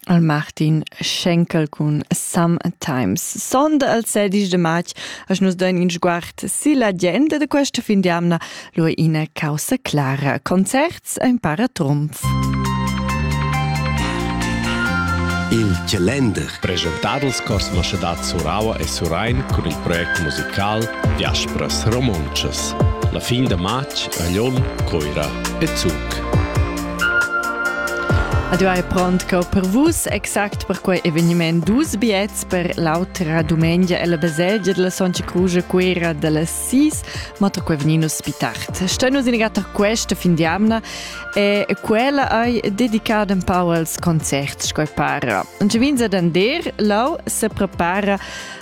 al Martin Schenkel cun Sometimes. Sonda al 16 de march as nus dain in sguard silla gente de questa fin di amna lo ina causa clara. Concerts ein para trumf. Il Calender. Presentadels Cosmos da Suraua e Surain cun il project musical Diasporas Romontschas. La fin de march a Lyon, Coira e Zug. Adieu è pront co per vus, exact per quei eveniment dus biets per l'autra dumengia e la baselgia della Soncia Cruce Cuera delle Sis, ma to quei veninus spitart. Stenus in gatta questa fin di amna e quella hai dedicada un po als concerts, coi para. Und vinza d'ander, lau se prepara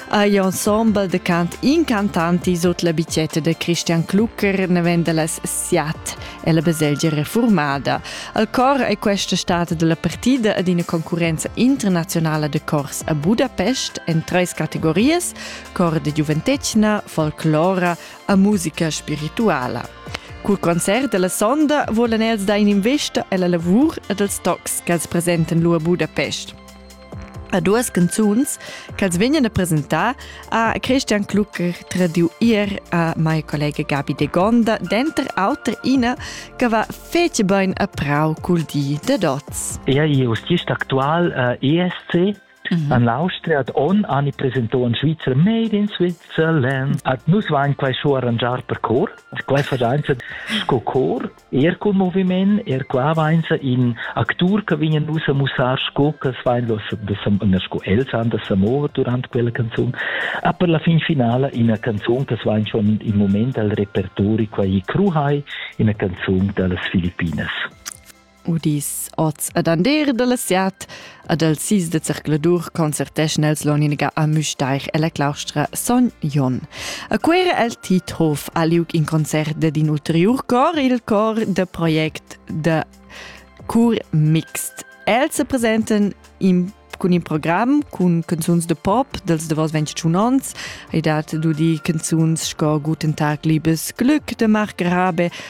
agli ensemble de cant incantanti sot la bicetta de Christian Klucker, ne vende las siat è la baselgia refurmada. Al cor è questa stata da la partida ad ina concurrenza internaziunala de cors a Budapest en treis categorias, cor de giuventetgna, folclora e musica spirituala. Cul concert della sonda volan els dar in investa alla lavur ed als tocs che els presenten lu a Budapest. a duas canzuns ch'els vegnan a presentar a Christian Klucker tradiu ir a mai collega Gabi de Gonda, denter auter ina che va fece bein a prau cul di de dots. Ea ius gist actual uh, ESC Mhm. An l'Austria ad on ani presentò in Svizzera Made in Switzerland. Ad nus vain quai scho arrangiar per cor. Quai fagenza sco cor Er cul moviment, er qua vainsa in actur che vegnan nus a mussar sco ch'els vain da sa, da sa, na sco els han da sa mover durant quella canzun, ha per la fin finala ina canzun che vain schon in moment al repertori quai Kruhai, ina canzun da las Filippinas. Udis oz ed ander da la siat Ad els sis de zercladur concerteschen els l'oniniga a Müstair e la claustra Son Jon. A quera el Tithof ha liug in concert de din ulteriur cor, il cor de project de Cur Mixt. Els se presenten in cun in program cun canzuns de pop dels davos 21 ons, hai dat du die canzuns sco Guten Tag, liebes Glück de Marc Rabe,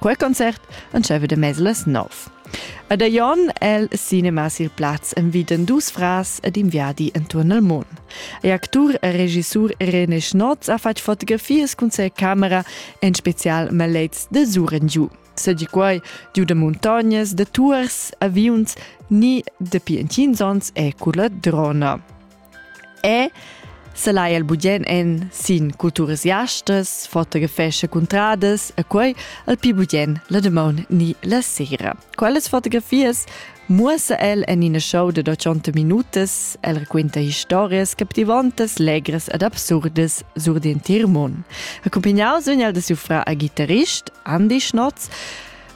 Quel concert entscheiva de mez las nov. Ed a Jon el cinema sil plaz enviden dus frars ed in viadi entuorn il mund. E actur e regissur René Schnotz ha fatg fotografias cun ses camera, en special malets de suren giu. Se di quai giu de muntognas, de tours, aviuns, ni de pientinsons e culla drona. E selai el bugen en sin culturas jastas, fotografescha cuntradas e quei al pi bugen la damaun ni la sera. Quellas fotografias muossa el en ina show de 80 minutas, el raquinta historias captivantas, legras ed absurdas sur d'entir mund. Accompagnaus vegn el da siu fra a gitarrist, Andy Schnotz,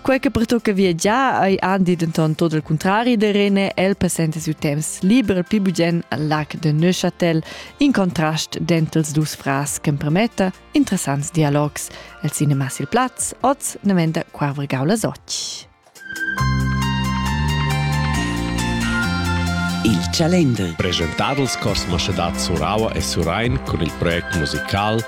Quei che pertucca viagiar ei andi denton tot il contrari de Rene, el passenta siu temps liber pli bugen al lac de Neuchâtel, in contrast denter els dus frars che premetta interessants dialogs. El cinema sil plaz, oz nemenda Quarvergau las occh. Il Chalender. Presentadels Cosmo Schedad Suraua e Surain con il project musical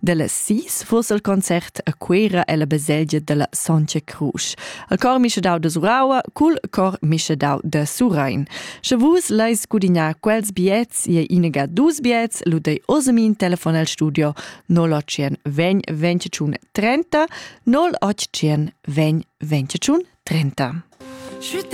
Dellas sis fuss el concert a Cuera ella baselgia dalla Sontga Crusch. El cor mischedau de Suraua cul cor mischedau de Surain. Sche vus leis gudignar quels biets, je inega dus biets, lu dei osemin telefon el studio 0800 20 30 0800 20 30. Schütte